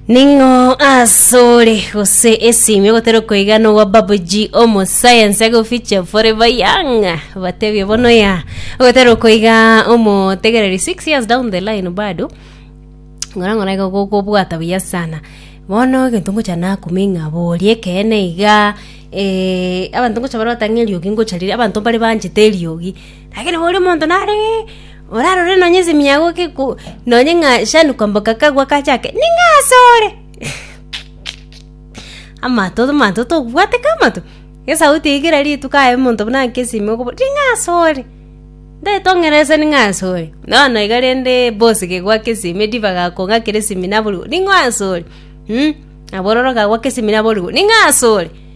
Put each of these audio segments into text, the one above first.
ning'o asore gose esimi ogotera okoigana owa babuji omosayansi agofiche forever young batebie bono ya ogotera okoiga omotegereri 6 years down the line bado ng'ora ng'ora iga gokobwata buya sana bono egento ngocha nakume ng'aborie ekeene iga eh, abanto ngocha barobatang'a eriogi ngocha riria abanto mbare banchete eriogi lakini boria omonto nare Orarore nonya ase emiyago nonya ng'a shani kwamboka kagwa kachake, ning'o asore? Amato amato tokobwate ka amato? Esauti eye kera rituko aye omonto buna akesime okobora, ning'o asore? Ntaete ong'erese ning'o asore? Bono iga rende bosi kegwa ake esime Diva gakong'a kera esimi naborigwe, ning'o asore? Mh, nabororo kagwa ake esimi naborigwe, ning'o asore?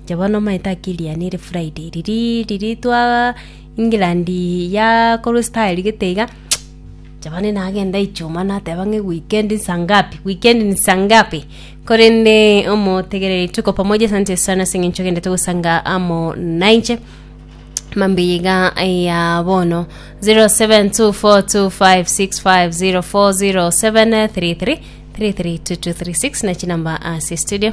Inche bono omanyete akiri yane ere Friday riria riria twa England yakorwa style gete iga, inche bono nagenda ichuma nateba ng'a weekend nsa ngapi weekend nsa ngapi? Korende omotegereri tuko pamoja asante sana ase eng'encho ogendete gosanga amo nainche mambia iga ya bono 07242565040733332236 na chinamba ase studio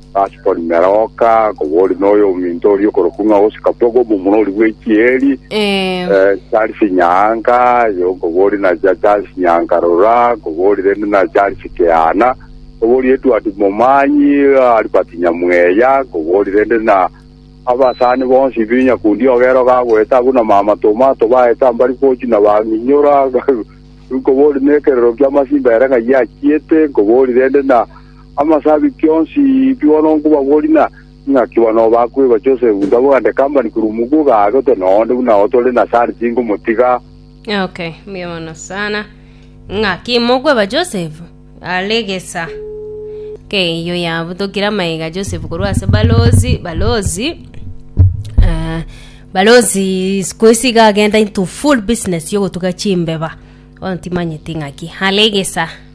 Ase korimera oka, koboria noyo ominto oria okorokwa ng'a Oscar Pogba, omomura oria bw'echieri, Ee. eh, Charles Nyanka, aye okoboria na cha Charles Nyanka rora, koboria rende na Charles Keana, koboria Edward Momanyi, Albert Nyamweya, koboria rende na abasani bonsi bi nyakundi ogero gagoeta abwo na mama toma tobaete ambari gochi na bang'inyora, nkoboria nekerero ki'amasimba ere ng'ai achiete, nkoboria rende na Amasabiti onsi bigo nonkobabori na ing'aki bono bakwegwa Joseph ntabogande company korwa omoguo gaagotwe noonde buna otore na sari tinkomotiga. Okay, mbuya mono sana. Ng'aki mokweba Joseph are gesa. Okay, iyo yabutokire amaiga Joseph korwa ase balozi, balozi. Eh, balozi sikuisi iga agenda into full business yogotuga chimbeba. Ontimanyeti ng'aki are gesa.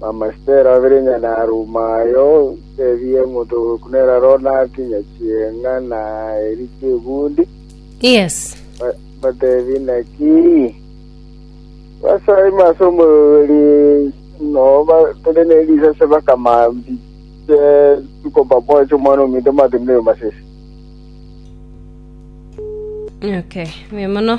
Bamasiteri babere onye naruma aye otebie omonto oboku nere aro nakinye chienga na eri chiegundi, Yes. ba- batebie naki basaima ase omorweri noo batore ne risase bakama mbiche tuko pamoja ase omwana ominto matenire masese. Okay, buya mono.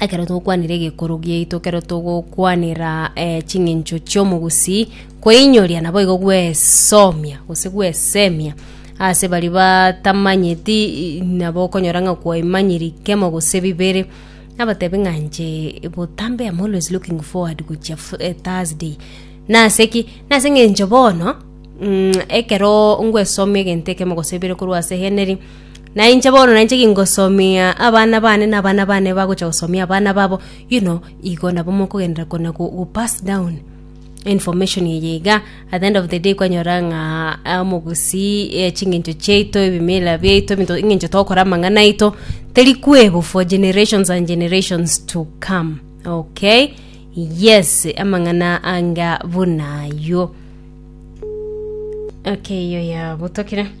ekero togokwanera egekoro giaito, ekero togokwanera eh, ching'encho chi'omogusii, kweinyoria naboigo gwesomia gose gwesemia ase baria batamanyeti i- nabo okonyora ng'a kwaimanyiri kemo gose bibere, nabatebi ng'a inche botambe am always looking forward gochia fri eh thursday, nase ki? nase eng'encho bono ekero ngwesomia egento ekemo gose bibere korwa ase henry. Na inche bono nainche gingosomia abana bane, na abana bane bagocha gosomia abana babo, you know, igo nabo mokogenderera kona go, go pass down information eye iga at the end of the day kwanyora ng'a ah, omogusii eh, ching'encho chiaito ebimila biaito ebinto ing'encho togokora amang'ana aito teri kwebo for generations and generations to come okay yes amang'ana anga buna aywo okay iyo yabutokire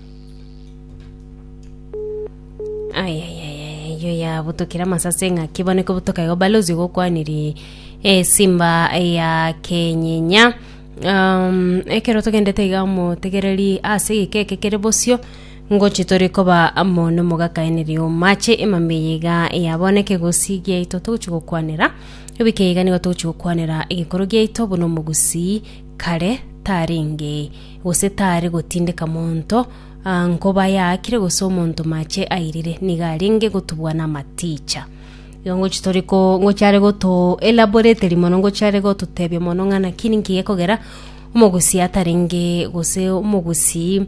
yo yabutokire amasase ng'aki bono ikobutoka igo balozi gokwaniri esimba ya kenyinya um, ekero togendete iga motegereri ase egikeke kere bosio ngochi tore koba amo nomogakaeneri omache emameye iga yaboneke gosi giaito togochi gokwanera ebike iga nigo togochi gokwanera egekoro giaito buna omogusii kare tarenge, gose tare gotindeka monto aa nkoba yaakire gose omonto mache airire, nigo arenge gotubua namaticha. Igo ngochi tori ko ngochi are goto elaborateri mono ngochi are gototebia mono ng'a naki ninki gekogera omogusii atarenge gose omogusii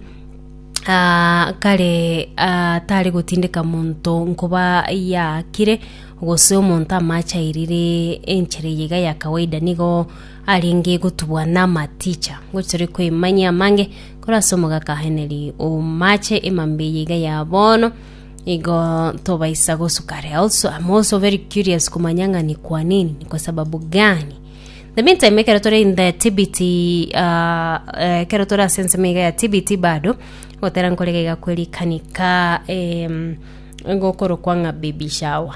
aa kare aa tare gotindeka monto nkoba yaakire gose omonto amache airire enchera eye iga ya kawaida nigo. arenge gotubwa namaticha. Ngochi tore koimanyia amange korwa ase omogakaaneri o maache emambe eye iga ya bono igo tobaisa gosuka are also I'm also very curious komanya ng'a ni kwa nini ni kwa sababu gani the meantime ekero tore in the tbt uh, eh, ekero tore ase ensemo iga ya tbt bado gotera nkorega iga kwerikanika em, gokorokwa ng'a baby shower